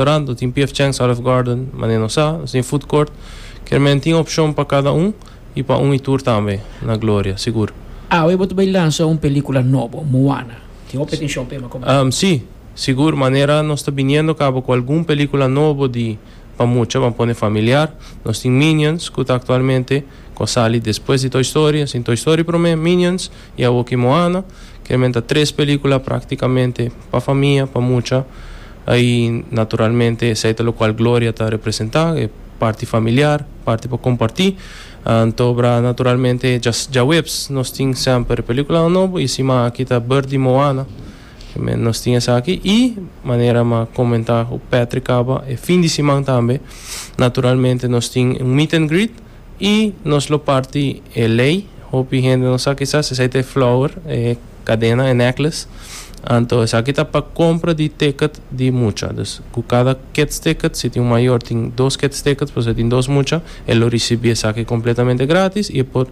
Restaurant, nos tin PF Chang's Olive Garden, manera nos sa, nos tin food court. Kermen tin opshon pa kada un i pa un i tur tambe na Gloria, sigur. Awe bo ta bai lansa un pelikula nobo, Moana. Tin hopi atenshon pa e, ma komo no? Si, sigur, manera nos ta biniendo kaba ku algun pelikula nobo di pa mucha, ban pone familiar. Nos tin Minions, ku ta aktualmente ku a sali despues di Toy Story. Nos tin Toy Story promé, Minions, I awor ki Moana, ke men ta tres pelikula praktikamente pa famia, pa mucha, ai naturalmente esei ta lokual Gloria ta representá, e parti familiar, parti pa kompartí. Anto'bra naturalmente djaweps nos tin sèmper e pelikulan nobo i siman aki ta bèrt di Moana, ke men nos tin esaki. I manera mi a komentá ku Patrick aba, e fin di siman tambe naturalmente nos tin un meet and greet. Y nos lo parti e ley. Hopi hende no sa kisas esaki ta e flower, e cadena, e necklace. Anto esaki ta pa compra di ticket di mucha. Dus cu cada kids ticket, si tin un mayor tin dos kids tickets pasobra tin dos mucha, e lo ricibi esaki completamente gratis y e por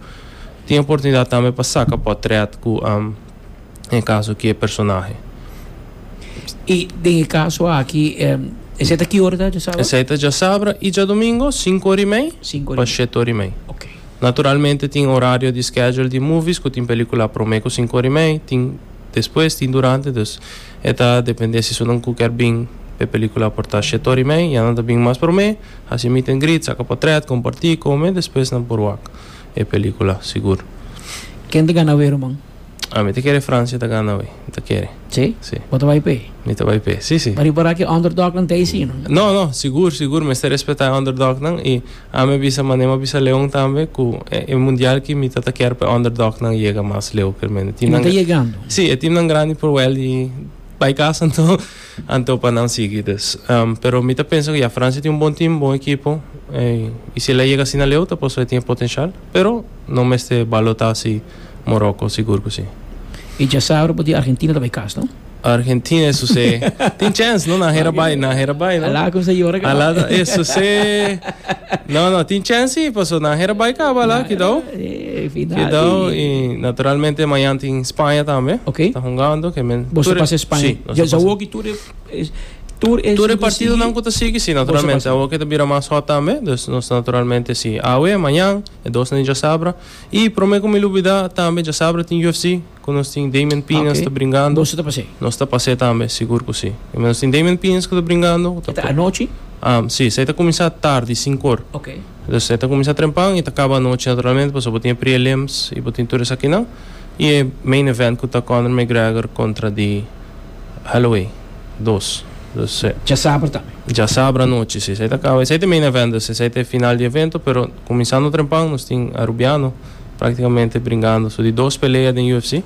tin e oportunidad tambe pa saca potret cu. e kaso ki e personahe. I den e kaso aki esei ta ki ora ta djasabra? Esei ta djasabra i djadomingo sinku ora i mei pa shete ora i mei. Naturalmente tin orario di schedule di movies ku tin pelikula prome ku sinku ora i mei, tin despues, tin durante, dus e ta depende si esunnan ku ker bin pa e pelikula por ta shete ora i mei, ya nan ta bin mas prome, hasi meet and greet, saka potret, komparti, kome, despues nan por wak. e pelicula sigur. Ken ta gana awey ruman? Ah mi ta kere Francia ta gana awey mi ta kere. Si? Si. Bo ta bai p'e? Mi ta bai p'e si si. Mari por a ki underdog nan ta eysi no? No no sigur sigur mester respeta e underdog nan y ami a bisa mane mi a bisa Leon tambe cu e mundial aki mi ta ta kier pa e underdog nan yega mas leu. Y nan ta yegando? Si e team nan grandi por wel y bai casa anto. Anto pa nan sigui dus. Pero mi ta pensa cu ya, Francia tin un bon team, bon ekipo. Y si el a yega asina leu ta pasobra e tin e potencial. Pero no mester balota asi Morocco, sigur cu si. Y djasabra bo di Argentina ta bay cas, no? Argentina e suse. Tin chance, no? Nan hera bay, nan hera bay, no? Alaa cuminsa yora caba. Alaa ta, e suse. No, no, tin chance si, pasobra nan hera bay caba alaa, cuidao. E Fidao i naturalmente mañan tin Spaña tambe ta hungando. Boso ta pasa Spaña? Ya sa woki tur e partidonan ku ta sigui? Tur e partidonan ku ta sigui si naturalmente. Awo ke ta bira mas hot tambe dus nos naturalmente si. Awe, mañan, e dosnan di djasabra. I prome ku mi lubida tambe djasabra tin UFC. Cu nos tin Damian Piñas ta bringando. Boso ta pas'e? Nos ta pas'e tambe, sigur cu si. E nos tin Damian Piñas cu ta bringando. E ta anochi? Si, esei ta cuminsa tardi, sincor. Ok. Entonces e ta cuminsa trempan y ta caba anochi naturalmente pasobra bo tin e prelims y bo tin tur esakinan. Y e main event cu ta Conor McGregor contra di Holloway dos. Entonces. Djasabra tambe? Djasabra anochi, si. Esei ta caba, esei ta e main event, esei ta e final di evento pero cuminsando trempan nos tin Arubiano. Praktikamente bringando su di dos pelea den UFC.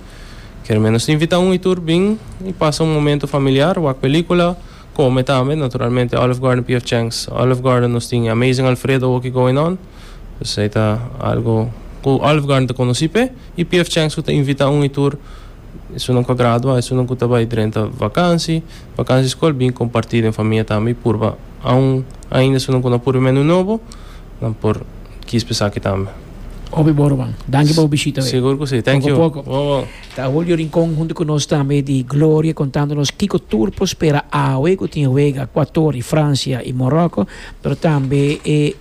Kermé nos ta invita un y tur bin y pasa un momento familiar, wak pelicula, come tambe, naturalmente Olive Garden PF Chang's Olive Garden nos tin Amazing Alfredo oki going on, dus ei ta algo cu Olive Garden ta conoci p'e y PF Chang's cu ta invita un y tur esunnan cu a gradua, esunnan cu ta bay drenta vakantie, vakantie school, bin comparti den famia tambe y purba aun ainda esunnan cu no a purba e menu nobo nan por kiss p'esaki tambe. Obe Borban, danki pa bo bishita. Sigur ku si, thank you. Poko poko. Ta Julio Rincon huntu ku nos tambe di Gloria kontando nos kiko tur por spera awe ku tin wega Ekuator i Fransia i Moroko, pero tambe e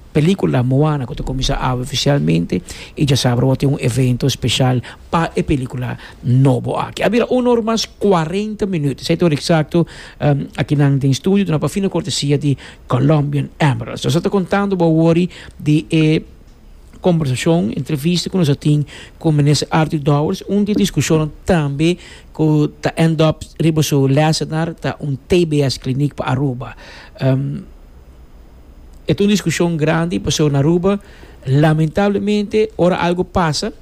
pelikula Moana ku ta kuminsá awe ofisialmente i djasabra bo tin un evento spesial pa e pelikula nobo aki. A bira uno or mas kuarenta minüt, esei ta hora eksakto aki nan den studio duna pa fino kortesia di Colombian Emeralds. Nos está contando Bowori de e conversación, entrevista que nos tin con minister Arthur Dowers, un de discusión también que ta end up riba su lesenar ta un TBS clinic pa Aruba. Um, e un discusión grande paso na Aruba lamentablemente ora algo pasa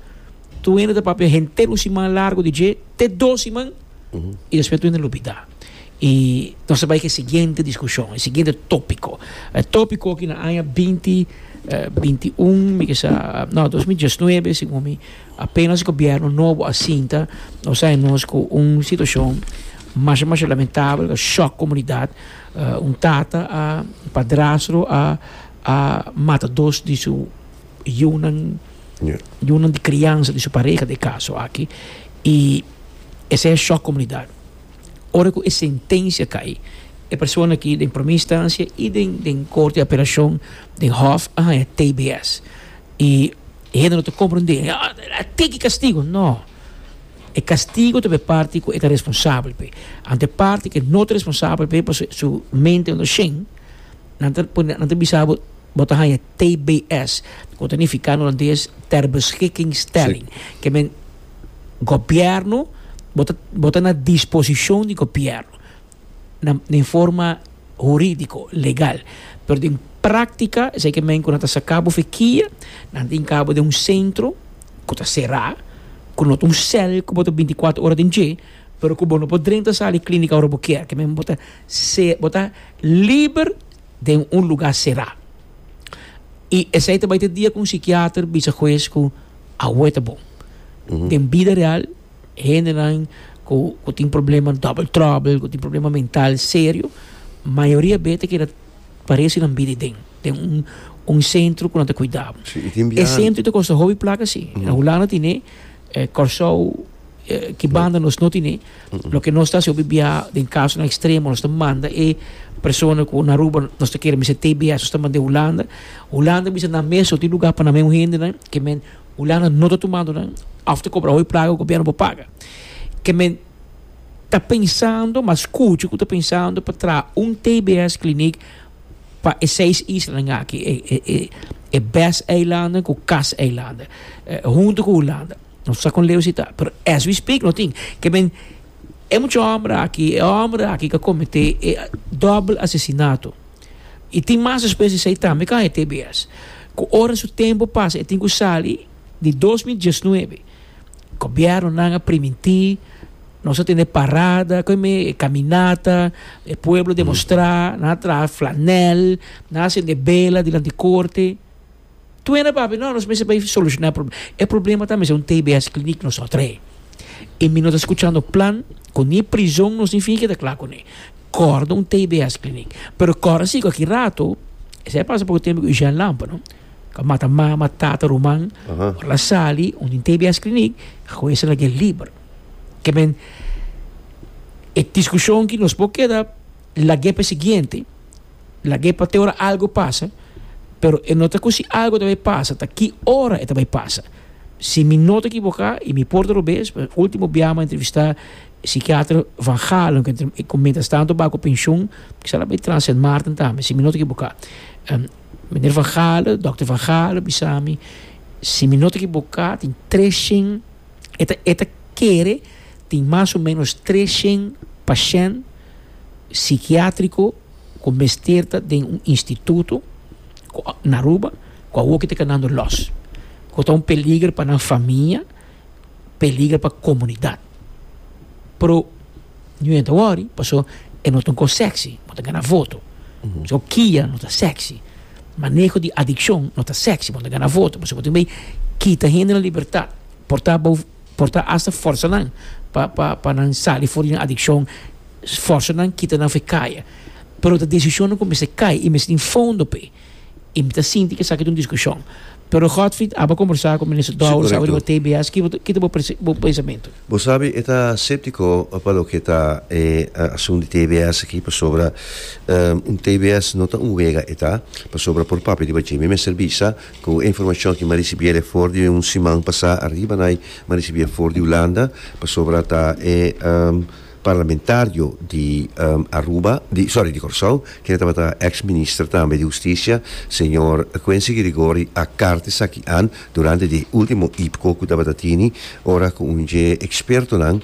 tu ene ta papia henter un siman largo di je te dos siman mm -hmm. y después tu ene lupida. y nos a bay ke siguiente discusion, e siguiente topico. E topico aki na aña binti binti un mi kesa no dos mil diesnuebe segun mi apenas gobierno nobo a sinta nos a hay nos ku un situacion masha masha lamentable ku a shock comunidad un tata a padrastro a a mata dos di su yunan yunan di crianza di su pareha den caso aki y esei a shock comunidad. ora cu e sentencia cay, e persona ki den primer instancia y den Corte di Apelacion, den Hof, a haña TBS. Y e hende no ta comprende, a tin ki castigo. No. E castigo ta pa e parti cu e ta responsabel p'e. Anto e parti cu no ta responsabel p'e pasobra su mente no ta shen, nan ta pone, nan ta bisa bo, bo ta haña TBS, cu ta nifica na holandes, ter beschikkingsstelling, ke men. gobierno bo ta bo ta na disposicion di gobierno na den forma huridico legal pero den practica esey ke men ku nan ta saka bo fikia nan tin kabo den un centro ku ta sera ku no ta un cel ku bo ta binti kuater ora den dje pero ku bo no por drenta sali clinica ora bo kier ke men bo ta se bo ta liber den un lugar sera. I esei ta bai te dia ku un sikiater bisa hues ku awe ta bon. Den bida real hendenan ku ku tin problema double trouble, ku tin problema mental serio, mayoria bes ta keda parese nan bida i den den un un sentro ku nan ta kuidá bo. E sentro ta kosta hopi plaka si. Na Hulanda tine, Kòrsou, Ki banda nos no tine. Loke nos ta hasi hopi bia den kasonan ekstremo nos ta manda e persona ku na Aruba nos ta kere mester tbs nos ta manda e Hulanda. Hulanda bisa nan mes so tin lugá pa nan men un hendenan ke men Hulanda no ta tumando nan òf ta kobra hopi plaga ku gobièrnu por paga. Ke men ta pensando mas kuchi ku ta pensando pa traha un tbs klinik pa e seis islanan aki e bes eilanden ku kas eilanden huntu ku Hulanda. No sa kon leu si ta, pero as we speak no tin. Ke men, e mucha homber aki, e homber aki ke a komete e dobel asesinato, i tin mas despues di esei tambe ke a hete bias, ku ora su tempu pasa e tin ku sali di dos mil diesnuebe. Gobièrnunan a primintí, nos a tene parada, kon mi e kaminata, e pueblo demostrá, nan a traha flanèl, nan a sende bela dilanti korte, Tuena papi, no, nos mester bay soluciona e problema. E problema ta mester un tbs clinic nosotre. Y mi no ta scuchando plan cu ni prizon nos ni finge ta cla cu ne. Corda un tbs clinic. Pero corda si cu aki rato, esey a pasa poco tempo cu Eugène Lampa, no? Cu a mata mama, tata, ruman. Ora el a sali, un tin tbs clinic, ago esey a lag'é liber. Ke men, e discusion aki nos por keda lag'é pa e siguiente. Lag'é pa te ora algu pasa, pero e no ta ku si algu ta bai pasa, ta ki ora e ta bai pasa. Si mi no ta ekiboká, i mi por ta robes, e último biaha mi a entrevistá e sikiater Van Gaalen, ku e ku mientras tanto ba ku penshun, kiza lo bai tras Sint Maarten tambe, si mi no ta ekiboká. Meneer Van Gaalen, dòkter Van Gaalen, bisa mi, si mi no ta ekiboká tin tres shen. E ta, e ta kere tin mas o ménos tres shen pashènt sikiátriko ku mester ta den un instituto ku a, na Aruba, ku awoki ta kanando lòs, ku ta un peliger pa nan famia, peliger pa komunidat. Pero. Ningún hende ta wòri, paso e no ta un kos sèksi. Bo ta gana voto. So, kia no ta sèksi. Maneho di adikshon no ta sèksi. Bo ta gana voto, paso bo tin bay kita hendenan libertat, portá bou, portá asta fòrsa nan pa, pa, pa nan sali for di nan adikshon, fòrsa nan, kita nan for e kaya. Pero ta desishonnan ku mester kai i mester tin fondo p'e. I mi ta sinti ku esaki ta un diskushon. Pero Godfried aba kombersá ku Minister Dowers awe riba TBS. Kiko ta bo pensamentu? Bo sabi e ta séptiko pa loke ta e asun di TBS aki pasobra un TBS no ta un wega e ta. Pasobra por papia riba dje mi mester bisa ku e informashon aki mi a risibí el e for di un siman pasá ariba na mi a risibí e for di Hulanda pasobra ta e Parlamentario di Aruba, di sorry di Corsou, kende tabata ex minister tambe di husticia, señor Quincy Gregori a carta esaki an durante di e ultimo IPCO cu tabata tini ora cu un dje expertonan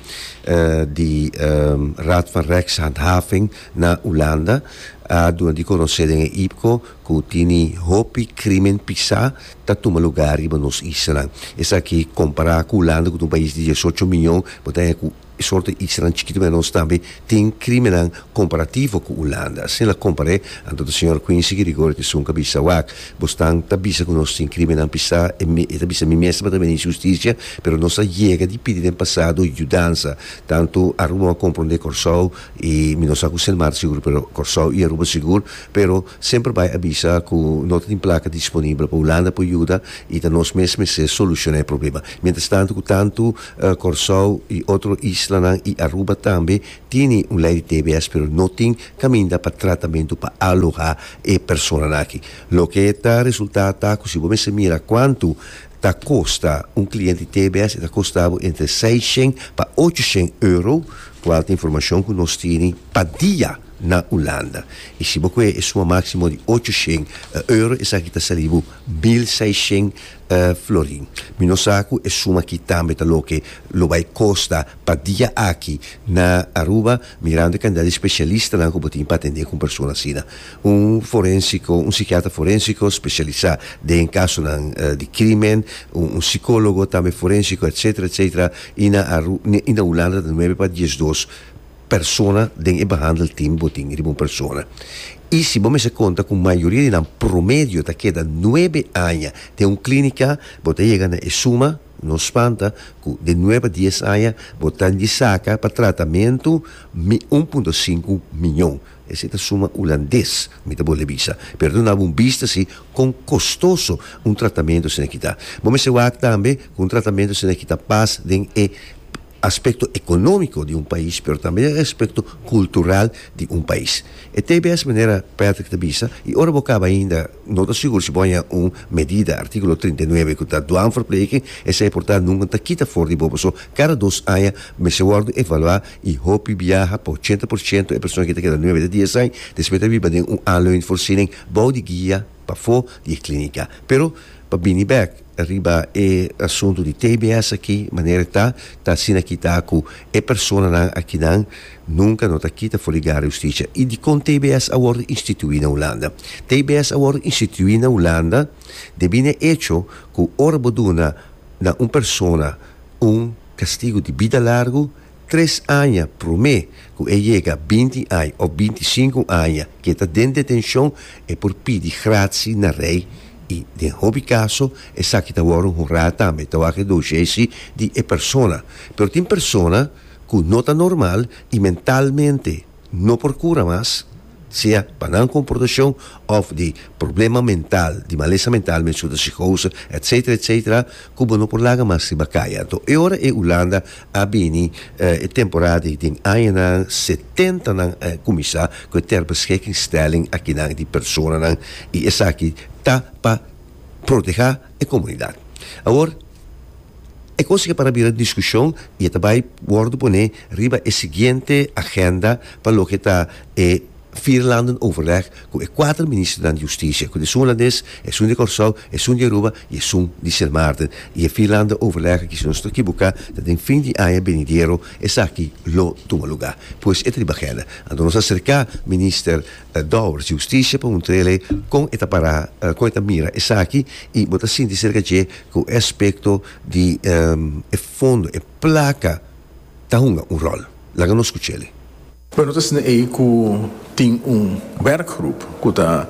di Raad van Rechtshandhaving na Hulanda a duna di conoce den e IPCO cu tini hopi crimen pisa ta tuma lugar riba nos islanan. Esaki compara cu Hulanda cu ta un pais di diesocho miyon bo ta haña cu E sorto iksinan chikito menos tambe tin krimennan komparativo ku Ulanda. Asina el a kompar'é, anto ta señor Quincy Gregorio ta esun ku a bisa, Wak, bo stan ta bisa ku nos tin krimennan p'esá, e ta bisa, mi mes tabata minis hustisia, pero nos a yega di pidi den pasado yudansa, tantu Aruba a komprondé Kòrsou i mi no sa ku Sint Maarten sigur, pero Kòrsou i Aruba sigur, pero. Semper bai a bisa ku no ta tin plaka disponibel pa Hulanda por yuda i ta nos mes mester solushona e problema. Mientrastantu ku tantu Kòrsou i otro islanan i Aruba tambe tini un lei di tbs pero no tin kaminda pa tratamentu pa alohá e personanan aki. Loke ta resultá ta ku si bo mester mira kuantu ta kosta un kliente di tbs e ta kosta bo entre seishen pa ochoshén euro, kual ta informashon ku nos tini pa dia. na Ulanda. I si bo kohe e suma máksimo di ocho shen euro, esaki ta sali bo mil seis shen florin. Mi no sa ku e suma akí tambe ta loke lo bai kosta pa dia aki na Aruba, mirando e kantidad di spesialistanan ku bo tin pa atendé ku un persona asina. Un forénsiko, un sikiatra forénsiko spesialisá den kasonan di krímen, un sikólogo tambe forénsiko, etsétera, etsétera, i na Aru, i na Ulanda ta nuebe pa diesdos. persona den e behandelteam bo tin riba un persona. I si bo mester konta ku mayoria di nan promedio ta keda nuebe aña den un klínika, bo ta yega na e suma, no spanta ku den nuebe a dies aña bo ta di saka pa tratamentu mi un punto sinku miñon. Esei ta suma hulandes, mi ta bole bisa. Pero duna bo un bista si kon kostoso un tratamentu asina ki ta. Bo mester wak tambe ku un tratamentu asina ki ta pas den e. aspecto economico di un pais pero tambe e aspecto cultural di un pais. E tbs manera Patrick ta bisa y ora bo caba ainda no ta sigur si bo a haya un medida articulo trinta y nueve cu ta dwanverpleging esey por ta nunca ta kita for di bo paso cada dos aña mester wordo evalua y hopi biaha pa ochenta por ciento e persona ki ta keda nueve ta dies aña despues ta biba den un aanleuningsvoorziening bou di guia pafo di e clinica pero pa bini bek. Riba e asuntu di tbs aki, manera e ta, ta asina kita ku e personanan akinan nunka no ta kita for di gara di hustisia. I dikon tbs a wòrdu instituí na Hulanda? Tbs a wòrdu instituí na Hulanda debí na e echo ku ora bo duna na un persona un kastigu di bida largu, Tres aña promé cu e yega binti ai of binti sinku aña cu e ta den detencion e por pidi gratsi na rey y den hopi caso esaki ta worde honrá tambe ta wak e doshesi di e persona. Pero tin persona cu no ta normal y mentalmente. No por cura mas, sea pa nan comportacion of di problema mental, di malesa mental, menso ta psichose, etc. Etc. Cu bo no por laga mas riba caya. Anto e ora e Hulanda a bini e temporada di den añanan setentanan a cuminsa cu e ter beschikkingsstelling akinan di personanan y esaki ta pa proteha e comunidad. Awor. E kos ke para bira diskushon i e ta bai wòrdu pone riba e siguiente agenda pa loke ta e Vierlandenoverleg ku e kuater ministernan di hustisia, ku esun Holandes, esun di Kòrsou, esun di Aruba i esun di Sint Maarten. I e Vierlandenoverleg aki, si nos ta kiboka, ta den fin di aña benidero esaki lo tuma lugá. Pues e ta riba agenda. Anto nos a serká minister Dor, Justicia pa un trele kon e ta para kon e ta mira esaki i bo ta sinti serka dje ku e aspekto di e fondo e plaka ta hunga un ròl. Laga nos skuch'el. Bueno ta esne ei ku tin un werkgroep ku ta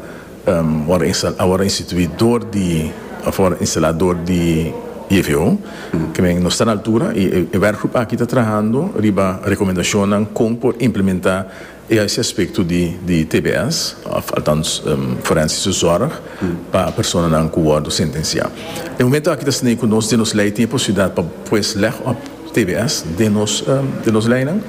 wòrdu instalá awor instituí dor di òf wòrdu instalá dor di JVO ke men nos ta na altura i e werkgroep aki ta trahando riba rekomendashonnan kon por implementá E hasi aspekto di tbs, althans forensische zorg, pa personanan ku wòrdu sentensiá. E momentu aki ta sneí ku nos den nos lei tin e posibilidat pa pues lèg òp tbs den nos den nos leinan.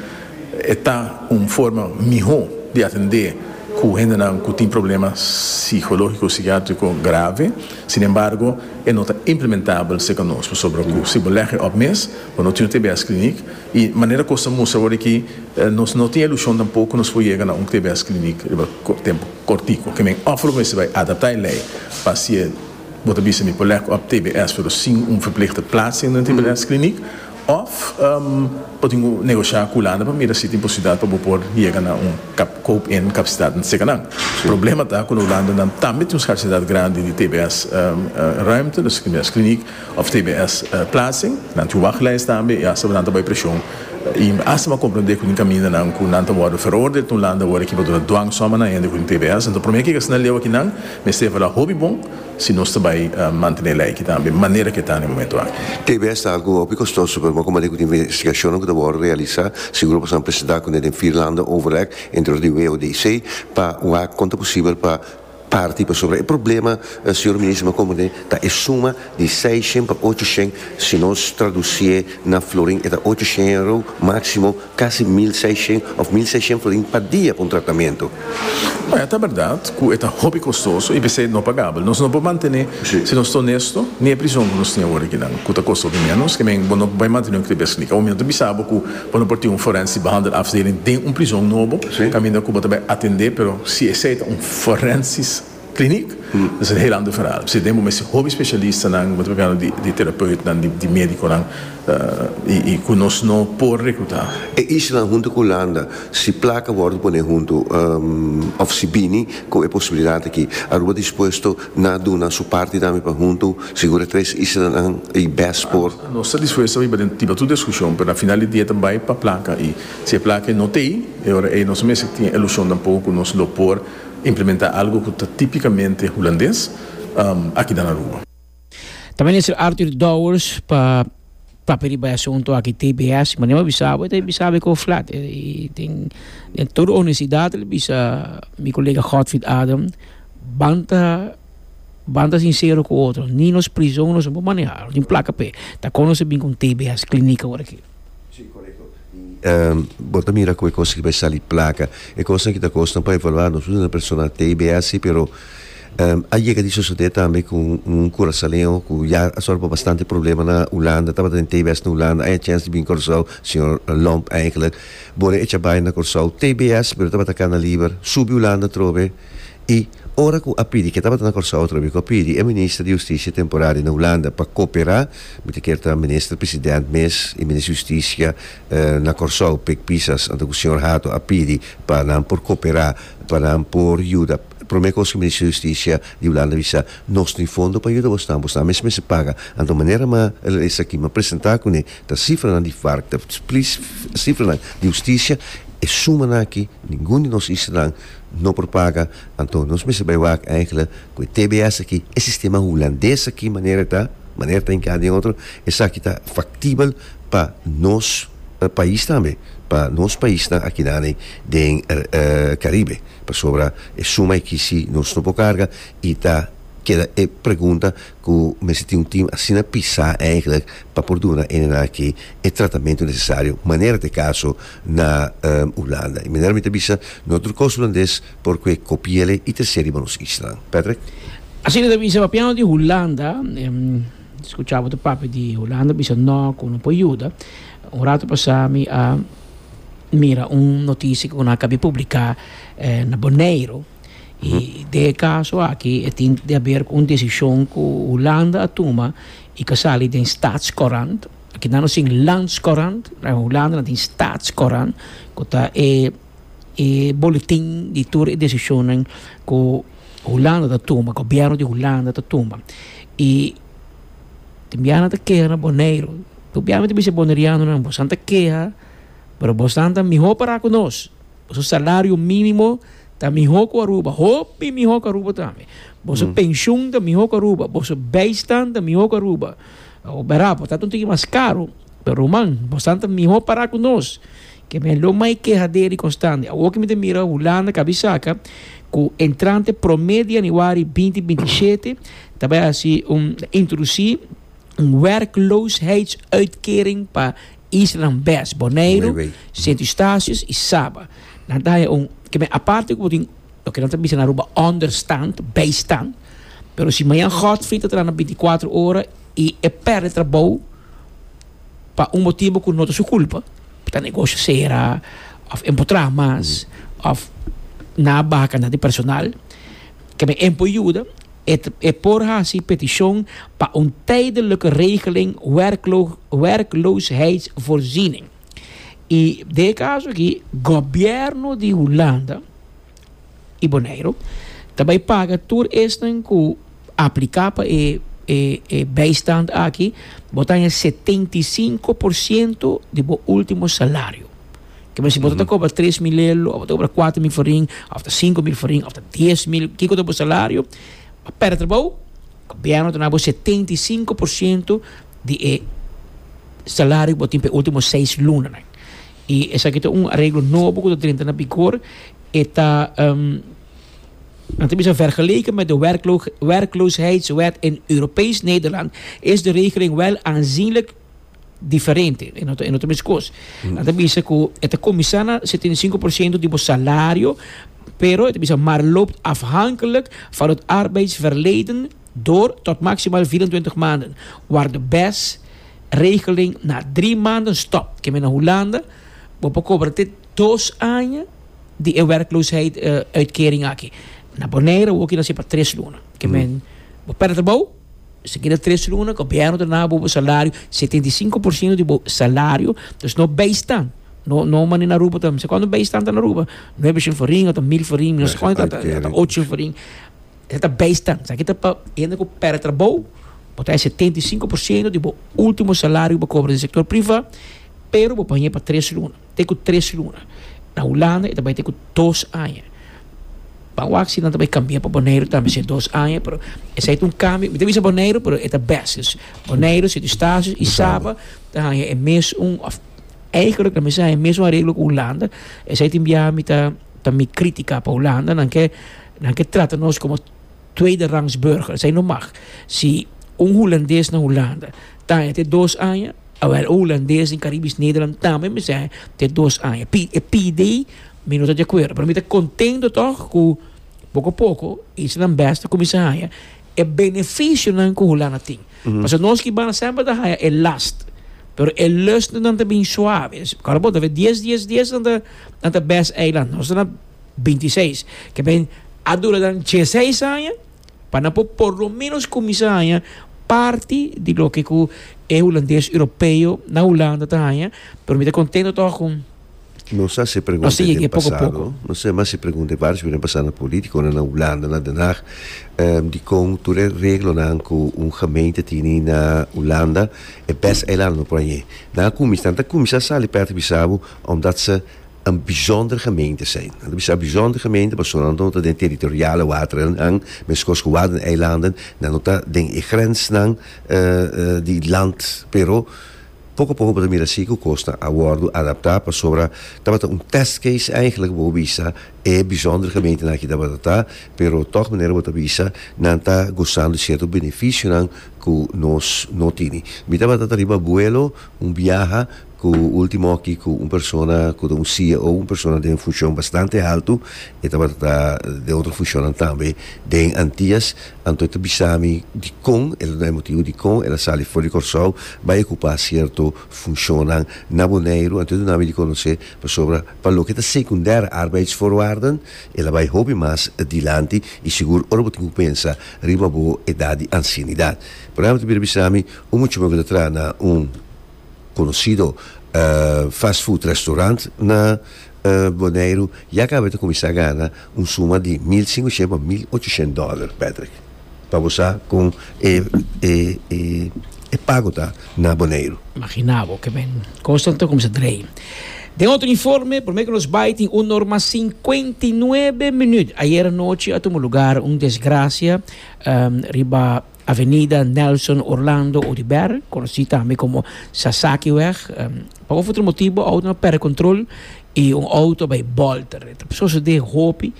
E ta un forma mihó di atendé ku hendenan ku tin problema sikológiko o sikiátriko grave. Sin embargo, e no ta implementabel serka nos pasobra ku si bo lèg e òp mes, bo no tin un tbs klinik, I manera kos ta mustra awor aki, nos no tin e ilushon tampoco ku nos por yega na un TBS kliniek riba tempu kortiku. Ke men òf lo mester bai adaptá e lei pa si e bo ta bisa mi por lèk òf TBS pero sin un verpleegster plaats dentro den TBS kliniek òf bo tin ku negosha ku Hulanda pa mira si tin posibilidat pa bo por yega na un koop-in kapasitat entre seka nan. Problema ta ku na Hulanda nan tambe tin un skarsidat grandi di TBS ruimte, TBS kliniek. of tbs plaatsing, nan tin wachtlijst tambe i asabanan ta bai prishon i mi asta por komprendé ku tin kamindanan ku nan ta wòrdu veroordeel tin landa awor aki pa duna dwang sòm a nan hende ku tin tbs enton promé ke asina leu aki nan mester evaluá hopi bon si nos ta bai mantené lei aki tambe manera ke ta den momentu aki. Tbs ta algu hopi kostoso pero bo a komprendé ku tin investigashonnan ku ta wòrdu realisá seguro pasanan presentá kuné den Vierlande Overleg entre di WODC pa wak kon ta posibel pa Parti pasobra e problema, señor Minister, mi a comprende ta e suma di seis shen pa ocho shen, si nos traducie na florin e ta ocho shen euro, maximo casi mil seis shen of mil seis shen florin pa dia pa un tratamentu. Bueno, ta berdad cu e ta hopi costoso y p'esey no pagabel. Nos no por mantene, si nos ta honesto, ni e prision cu nos tin awor aki nan, cu ta costa hopi menos, skemen bo no bay mantene un cribes ni. Awor mi no ta bisa bo cu, pa no por tin un forensic behandelafdeling den un prizon nobo kaminda ku bo ta bai atendé, pero si esei ta un forensic kliniek ta ser hel ander verhaal. Pasobra den bo mester hopi spesialistanan, bo ta bai hablando di di terapeutnan, di médikonan i ku nos no por rekrutá. E islanan huntu ku Hulanda si plaka wòrdu poné huntu òf si bini ku e posibilidat aki, Aruba dispuesto na duna su parti tambe pa huntu sigura tres islanan i bes por Nos ta dispuesto pa biba den tipo tur discusion, pero na final di dia ta bay pa placa y si e placa no ta ey, e ora ey nos mester tin e ilusion tampoco cu nos lo por implementa algo cu ta tipicamente Hulandes aki den Aruba. Ta Minister Arthur Dowers pa papia riba e asunto aki tbs, ma niu a bisa bo, e ta bisa bo e coge flat. Y tin den tur honestidad lo bisa mi colega Godfried Adam, banta. Banta sincero cu otro. Ni nos prison nos no por maneha. Lo tin placa p'e. Ta con nos a bin cu un tbs clinic aworaki. Sí, corecto. Y bo ta mira cu e cos aki bai sali placa. E cosnan aki ta cosnan pa evaluar. Nos no ta na persona tbs si, pero a yega di sucede tambe cu un curasaoleño cu ya a sufri pa bastante problema na Hulanda, tabata den tbs na Hulanda, a haya chance di bin Curaçao, señor Lomp, eigenlijk. Bo a recha bai na Curaçao, tbs, pero tabata cana liber, subi Hulanda atrobe. I ora ku a pidi, ke tabata na Kòrsou otro amigu a pidi e minister di Hustisia temporario na Hulanda pa koperá, mi ta kier ta minister president mes i minister di Hustisia na Kòrsou, Pik Pisas, anto ku señor Hato a pidi pa nan por koperá, pa nan por yuda, promé kos ku minister di Hustisia di Hulanda a bisa, Nos tin fondo pa yuda bosnan, bosnan mes mester paga. Anto manera mi a esaki, mi a presentá kuné ta sifranan di vark, ta sifranan di Hustisia, e sumanan aki, ningun di nos islanan, no por paga anto nos mester bai wak enkele ku e tbs aki e sistema hulandes aki manera ta manera ta inka den otro esaki ta faktibel pa nos pais tambe pa nos paisnan akinami den karibe pasobra e suma e kisi nos no por karga i ta keda e pregunta ku mester tin un tim asina pisá eigenlijk pa por duna ene nan aki e tratamentu nesesario manera ta e kaso na Hulanda. E manera mi ta bisa no tur kos hulandes por kue kopi'el i ta serie pa nos islan. Patrick. Asina ta bisa papiando di Hulanda, skuchá bo ta papia di Hulanda bisa no ku no por yuda. Un ratu pasá mi a mira un notisia ku nan a kabia publiká na Boneiru. I den e kaso aki e tin di haber un desishon ku Hulanda a tuma i ka sali den Staatscourant. Aki nan no tin Landscourant, na Hulanda nan tin Staatscourant ku ta e e boletin di tur e desishonnan ku Hulanda ta tuma, gobièrnu di Hulanda ta tuma. I tin bia nan ta keha na Boneiru. Gobièrnu ta bisa e bonerianonan, Bosan ta keha, pero bosan ta mihó pará ku nos. Boso salario minimo ta miho ku Aruba, hopi miho ku Aruba tambe. Boso penshun ta miho ku Aruba, boso beistan ta miho ku Aruba. Awo bera, bo ta un tiki mas karu, pero ruman, bosan ta miho para ku nos, ke mi a lo mai kehaderi konstante. Awo ke mi ta mira Hulanda kabi saka ku entrante prome di yanüari binti binti i shete ta bai hasi un introdusí. un werkloosheidsuitkering pa islanan Best, Boneiru, Sint Eustatius i Saba. Nan ta haña un kende aparte ku bo tin loke nan ta bisa na Aruba ònderstand, bijstand. Pero si Mañan Godfrey ta trahando binticuatro ora i e pèrdè trabou pa un motibu ku no ta su kulpa, ta negosio sera òf e empotrá mas òf nan a baha kantidat di personal, Kende en por yuda e por hasi petishon pa un tijdelijke regeling werkloosheidvoorziening. I den e kaso aki gobièrnu di Hulanda i Boneiru ta bai paga tur esnan ku apliká pa e bijstand aki, bo ta haña setenta i sinku por siento di bo último salario. Ke mester bo ta kobra tres mil lel, of bo ta kobra kuater mil forin, of ta sinku mil forin, of ta dies mil, kiko ta bo salario, a pèrdè trabou, gobièrnu ta duna bo setenta i sinku por siento di e salario ku bo tin p'e último seis lunanan. I esaki ta un areglo nobo ku ta drenta na bigor, e ta nan ta bisa vergeleken met de werkloosheidwet in Europees Nederland is de regeling wel aanzienlijk diferente, e no ta, e no ta meskos. Nan ta bisa ku e ta komisá na 75% di bo salario, pero e ta bisa maar loopt afhankelijk van het arbeidsverleden door tot maximaal 24 maanden, waar de bes regeling na drie maanden stop. Ke men na Hulanda, bo por kobra te dos aña di e werkloosheidsuitkering aki. Na Bonaire, woki na ser pa tres luna. Ke men, bo pèrdè trabou, Esaki na tres luna, gobièrnu ta dal bo bo salario, setenta i sinku por siento di bo salario, dus no beistan, no no mane na Aruba ta, no se kuantu beistan ta na Aruba, nuebe shen forin ota mil forin, mi no se kuantu ta ta ta ocho shen forin, esaki ta beistan, esaki ta pa hende ku pèrdè trabou, bo ta haña setenta i sinku por siento di bo ultimo salario ku bo kobra den sektor privá, pero bo pañ'e pa tres luna. te ku tres luna. Na Hulanda e ta bai te ku dos aña. Ban wak si nan ta bai kambia pa Boneiru tambe si e dos aña, pero esei ta un kambio. Mi ta bisa Boneiru, pero e ta bèst. Dus Boneiru, Sint Eustatius i Saba ta haña e mes un, òf eigentlik lamis haña e mes un areglo ku Hulanda. Esei tin biaha mi ta ta mi kritika pa Hulandanan ke nan ke trata nos komo. Tweede rangs burger, esei no mag. Si un Hulandes na Hulanda taña te dos aña, awel un Hulandes den Caribisch Nederland tambe mester taña te dos aña. Pi e pi dei mi no ta di akuerdo, pero mi ta contento tog cu poco a poco esnan best ta cuminsa haña e beneficionan cu Hulanda tin. Pasobra nos cubanan semper ta haña e last, pero e lustnan ta bin suave. Awo bo ta haber dies, dies, dies nan ta best eiland. Nos ta na. 26. Ke men a dura dan dieseis aña pa nan por por lo menos kuminsá haña parti di loke ku e hulandes europeo na Hulanda ta haña, pero mi ta kontento tòg ku Nos a hasi pregunta den pasado, nos a hasi pregunta vários keer den pasado na polítikonan na Hulanda, na Den Haag, dikon tur e reglonan ku un gemeente tini na Hulanda, e bèst eilannan por aña. Nan a kuminsá, nan ta kuminsá sali pèrtibisabu, omdat se Nan bijzonder gemeente zijn. Nan ta bisa bijzonder gemeente pasobra nan no ta den e territoriale waterennan, meskos ku Waddeneilanden, nan no ta den e grensnan di land. Pero poko a poko bo ta mira si ku kosnan a wòrdu adaptá pasobra tabata un test case eigentlik ku bo bisa e bijzonder gemeentenan aki tabata ta, pero tòg manera bo ta bisa nan ta gozando sierto benefisionan ku nos no tini. Mi tabata ta riba vuelo un biaha. Ku ultimo aki ku un persona ku ta un CEO, un persona den funshon bastante haltu, e tabata ta den otro funshonnan tambe den Antias, anto e ta bisa mi dikon e ta duna e motibu dikon el a sali for di Kòrsou bai a okupá sierto funshonnan na Boneiru, anto e duna mi di konosé pasobra pa loke ta sekundêre arbeidsvoorwaarden el a bai hopi mas dilanti i sigur ora bo tin ku pensa riba bo edat di ansienidat. Por ejemplo e ta bira bisa mi un muchachon ku ta traha na un conocido fast food restaurant na Boneiru ya caba ta cuminsa gana un suma di mil cincuciento pa mil ochoshent dollar Patrick pa bo sa con e pago ta na Boneiru. Magina bo ke men cosnan ta cuminsa drei. Den otro informe prome ke nos bay tin un norma cincuenta y nuebe minuut ayer anochi a tuma lugar un desgracia riba Avenida Nelson Orlando Odibert, konosí tambe komo Sasakiweg. Pa un of otro motibo outo a pèrdè kontrol i un outo a bai bòlta. E ta sosodé hopi.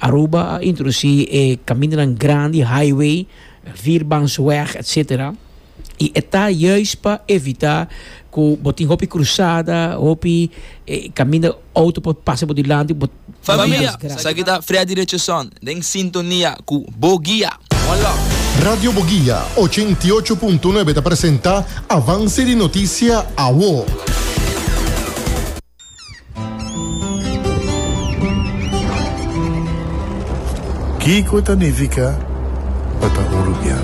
Aruba a introdusí e kamindanan grandi, highway, vierbansweg etsetera, i e ta juis pa evitá ku bo tin hopi krusada, hopi kaminda outo por pasa bo dilanti. Familia, esaki ta Freddy Richardson den sintonia cu Bo Guia. One love. Radio Boguia ochenta i ocho punto nuebe ta presenta Avance di Noticia Awo. Kiko ta nifica pa ta un rubian?